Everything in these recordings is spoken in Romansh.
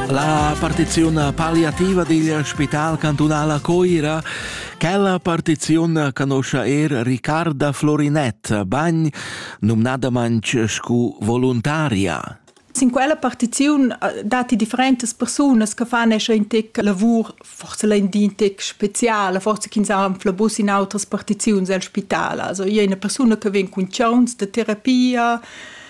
La partiziun palliativa digl Spital cantunal a Coira Quella partiziun canoscia er Ricarda Florinett, bagn numnadamanc scu voluntaria. Sin quella partiziun eh, datti differentas persunas che fan esser in tec lavur, forse in di in tec speziale, forse ch'ins anfla bus in outras partiziuns al spital. Also, è una persona che vien cun chauns de terapia,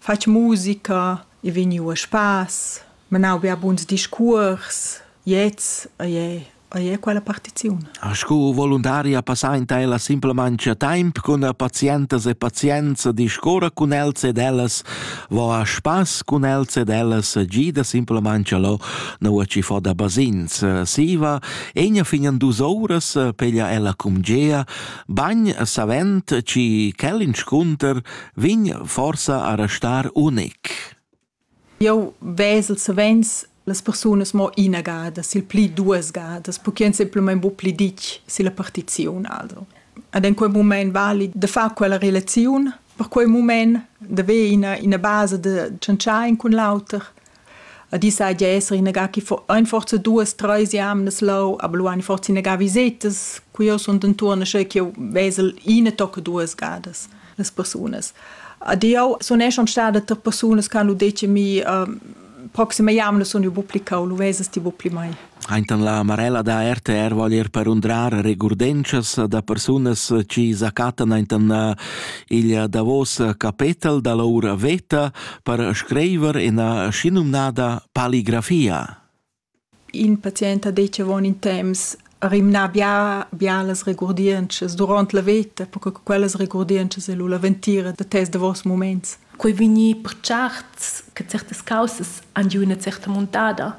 fatg musica, i vegniu a spass, menau bia buns discuors, gliez ei ei ei quella partiziun. Sco voluntaria passainta ella simplamain a temp cun pazientas e pazienza discorra cun els ed ellas va a spass cun els ed ellas gida simplamain lo nua ci fa da basins. Siva, egna fin an dus ouras peglia ella cum gea, bagn savent ci quell'inscunter vegn forsa a restar unic. Jau vesel savens las persunas mo ina gada, sil pli duas gadas, perché ein semplamain bu pli ditg silla partiziun. Also. Ad en quei moment vali de far quella relaziun, per quei moment de ver ina, ina base de tschantschain cun l'auter, Ed i saja esser inagà chi fo aint forza duos, trais jamnas lou, aber lu hani forsa inagà visetas, cu jeu sun d'entuorn, sche ch'jeu vesel ina tocca duas gadas las persunas. Ed jeu sun er schon stada tra persunas che hanno detto a mi, uh, proxima jamna sun jeu bu pli cau, lu vesas ti bu pli mei. Aintan la Marella da RTR vogl ir per undrar regurdentschas da persunas chi s'acattan aintan eh, il davos capetel da l'oura veta per scriver ina schinumnada paligrafia. In patient ha detg avon in temps rimnà bia, bia las regurdientschas durant la veta, perché quellas regurdientschas è la ventira da tes davos moments. Quei vegni per certs che certas causas han giu una certa montada.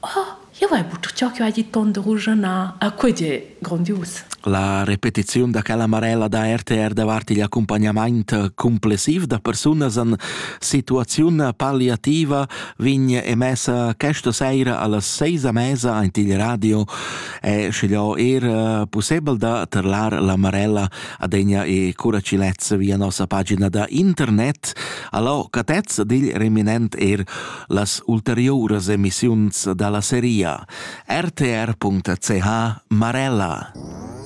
Ah, io vai butt ciò che hai dit tonderuge na. A quei è grondius. La repetiziun da quella marella da RTR davart igl accompagnament complessiv da persunas en situaziun palliativa vegn emessa questa seira allas seis a mesa ant il radio e schiglio er eh, possibel da terlar la marella adegna e curacilez via nossa pagina da internet allo catez dil reminent er las ulteriouras emissiuns da la seria rtr.ch Marella.